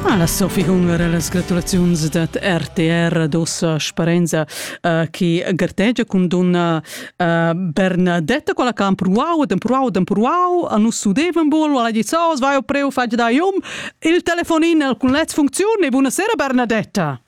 Alla Sophie Hunger e las gratulaziuns dat RTR dossa sparenza uh, che gartegia con donna uh, Bernadetta quella can pruau dem pruau dem pruau a nus sudevan bol alla gizaus vai o preu fag da iom il telefonin al cun letz funziun e buonasera Bernadetta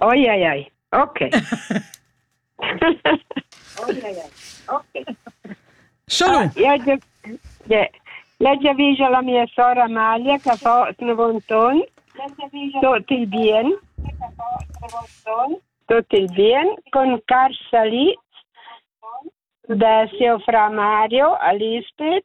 Oi ai ai. Ok. Oi ai ai. Ok. Shalom. Ja, ja, ja ja vejo la mia sora Amalia che fa Snavonton. Tutti bien. Tutti bien. Con Carsalit da Seu Fra Mario a Lisbeth.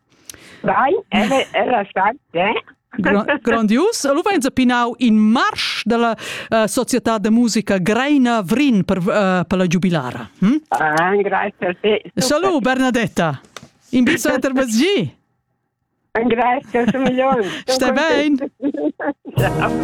Vai, era, era stat, eh? Grandius. Lu veins pinau in marsch dalla uh, società de musica Greina Vrin per, uh, per la giubilara. Hm? Ah, grazie a te. Salut, Bernadetta. In biso intervesgi. Grazie, sono migliore. Stai bene? Ciao.